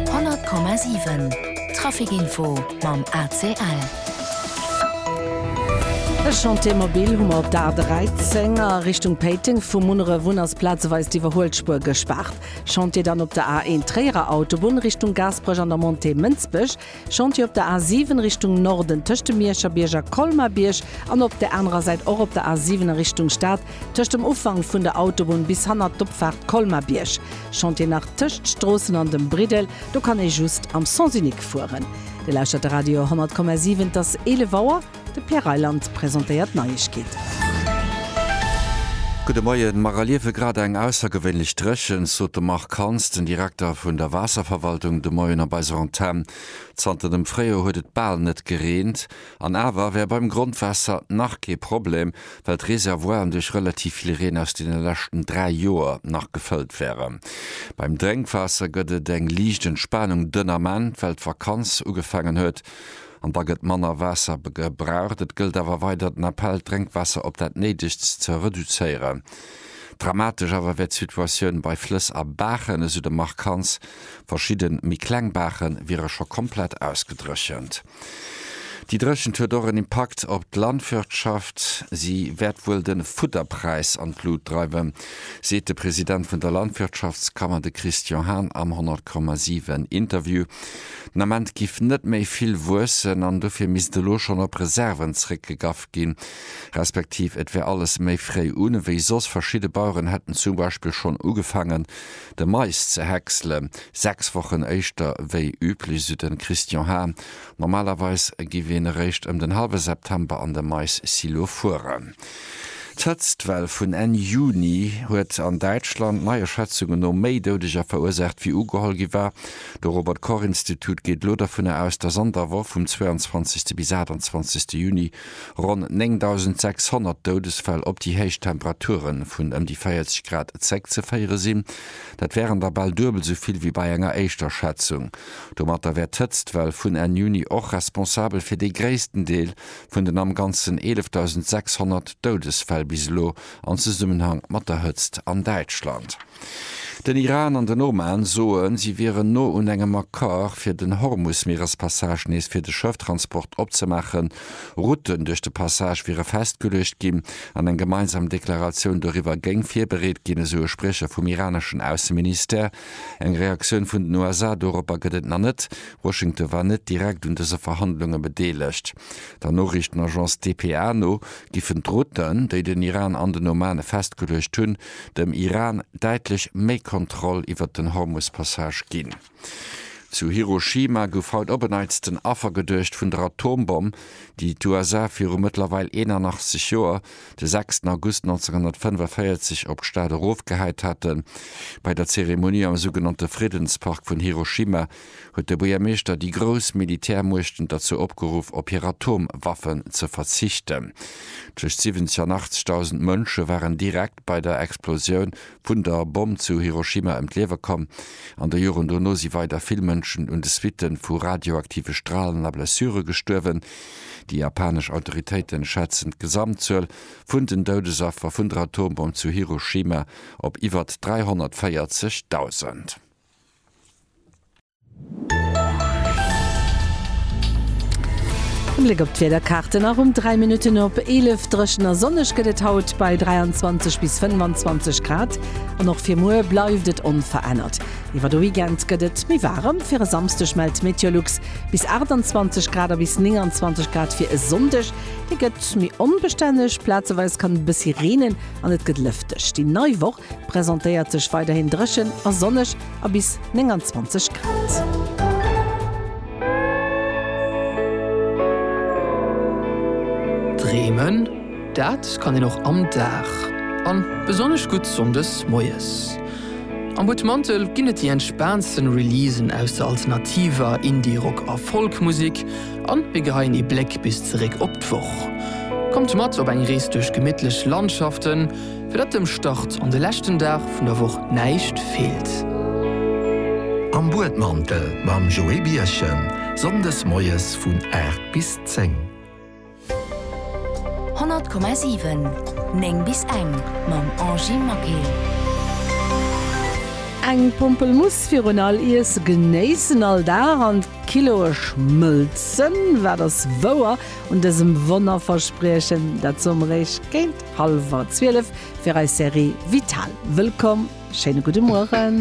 100,7 Trafic Info mam ACL. E Chantier mobil hu mer op der A13 a Richtung Péiteng. Vu Munneref un ass plazeweis d'Iwwerhuelspuer gespaart. Chantier dann op der A1 Tréierer Autobunn Richtung Gaasperech an der Montée Mënsbech. Chantier op der A7 Richtung Norden tëscht dem Mierscherbierg a Colmar-Bierg an op där anerer Säit och op der A7 a Richtung Stad tëscht dem Ufank vun der Autobunn bis hannert d'Opfaart Colmar-Bierg. Chantier nach tëscht d'Stroossen an dem Briddel, do kann ee just am Sens unique fueren. Dir lauschtert de Radio 100,7, et ass 11 Auer. De Pierre Reyland presentéiert d'Neiegkeeten. Gudde Moien. Mer erliewe grad eng aussergewéinlech Dréchent, sot de Marc Hans, den Direkter vun der Waasserverwaltung de Moien op eiser Antenn. Zanter dem Fréijoer huet et bal net gereent. An awer wär beim Grondwaasser nach kee Problem, well d'Reservoiren duerch relativ vill Reen aus deene leschten 3 Joer nach gefëllt wären. Beim Drénkwaasser gëtt et eng liicht Entspanung dënn Ament, well d'Vakanz ugefaangen huet. an da gëtt manner Waasser gebraucht. Et gëllt awer weider den Appell, d'Drénkwaasser op dat Néidegst ze reduzéieren. Dramatesch awer wär d'Situatioun bei Flëss a Baachen, esou de Marc Hans. Verschidde méi kleng Baache wiere scho komplett ausgedréchent. Déi Dréchent huet och en Impakt op d'Landwirtschaft. Si wäert wuel de Fudderpräis an d'Lut dreiwen, seet de President vun der Landwirtschaftskammer, de Christian Hahn am 100,7 Interview. Den Ament giff net méi vill wuessen an dofir misst elo schonn op Reserven zréckgegaff ginn, respektiv et wär alles méi fréi un ewéi soss. Verschidde Baueren hätten zum Beispill schonn ugefaangen de Mais ze häcksele 6 Wochen éischter wéi üblech, esou de Christian Hahn. Normalerweis giff een eréischt ëm den hallwe September an de Mais-Silo fueren. D'Hëtztwell vun Enn Juni huet an Däitschland neie Schätzunge no méi Doudeger verursaacht, wéi ugeholl gi war. De Robert Koch Institut geet elo dovunner aus, datt an der Woch vum 22. bis 28. Juni ronn 9.600 Doudesfäll op déi héich Temperature vun ëm déi 40 Grad zeréckzeféiere sinn. Dat wären der bal duebel esou vill wéi bei enger éischter Schätzung. Domatter wär d'Hëtztwell vun Enn Juni och responsabel fir dee gréissten Deel vun den am Ganzen 11.600 Doudesfäll bis elo an Zesummenhang mat der Hëtzt an Däitschland. Den Iran an den Oman soen, si wieren no un engem Accord, fir den Hormus-Mierespassage nees fir de Schëfftransport opzemaachen. Routen duerch de Passage wiere festgeluecht ginn an eng gemeinsam Deklaratioun doriwwer géing virbereet ginn, esou e Spriecher vum iraneschen Ausseministère. Eng Reaktioun vun den USA doropper gëtt et nach net. Washington war net direkt un dëse Verhandlunge bedeelegt. Der Noriichtenagence dpa no giffen d'Routen, déi den Iran an den Oman festgeluecht hunn, dem Iran däitlech méi Kontroll iwwert den Hormus-Passage ginn. Zu Hiroshima gouf haut op en Neits den Affer geduecht vun der Atombomm, déi d'USA viru mëttlerweil 81 Joer de 6 August 1945 op d'Stad erofgehäit haten. Bei der Zeremonie am sougenannte Friddenspark vun Hiroshima huet de Buergermeeschter déi grouss Militärmuechten derzou opgeruff, op hir Atomwaffen ze verzichten. Tëscht 70 an 80.000 Mënsche waren direkt bei der Explosioun vun der Bomm zu Hiroshima ëm d'Liewe komm. An de Joren dono si weider vill Mënschen un de Suitte vu radioaktive Stralen a Blessure gestuerwen. Déi japanesch Autoritéiten schätzen d'Gesamtzuel vun den Doudesaffer vun der Atombomm zu Hiroshima op iwwert 340.000. E Bléck op d'Wiederkaarten, Erëm 3 Minutten op 11 dréchen a sonneg gëtt et haut bei 23 bis 25 Grad an och fir muer bleift et onverännert. Iwwer de Weekend gëtt et méi waarem, fir e Samsdeg mellt Meteolux bis 28 Grad a bis 29 Grad fir e Sonndeg. Dee gëtt méi onbestänneg, plazeweis kann et e bëssi reenen an et gëtt lëfteg. Déi nei Woch presentéiert sech weiderhin dréchen a sonneg a bis 29 Grad. Dreemen, dat kann een och am Dag, an besonnesch gutt sonndes moies. Am Buttmantel ginn et déi entspaantsten Releasen aus der alternativer, Indie-Rock a Folk-Musek an mir geheien ee Bléck bis zeréck op d'Woch. Kommt mat op eng Rees duerch gemittlech Landschaften, fir datt dem Start an de leschten Dag vun der Woch näischt feelt. Am Buedmantel mam Joé Birchen, Sonndes moies vun 8 bis 10. 100,7 9 bis eng mam Angy Maquil. Eng Pompelmuss virun all Iesse genéissen all Dag an d'Kiloe schmëlzen, wat ass wouer un dësem Wonnerverspriechen? Dat soe mer Iech géint hallwer zwielef fir eis Serie Vital. Wëllkomm, schéine gudde Mueren.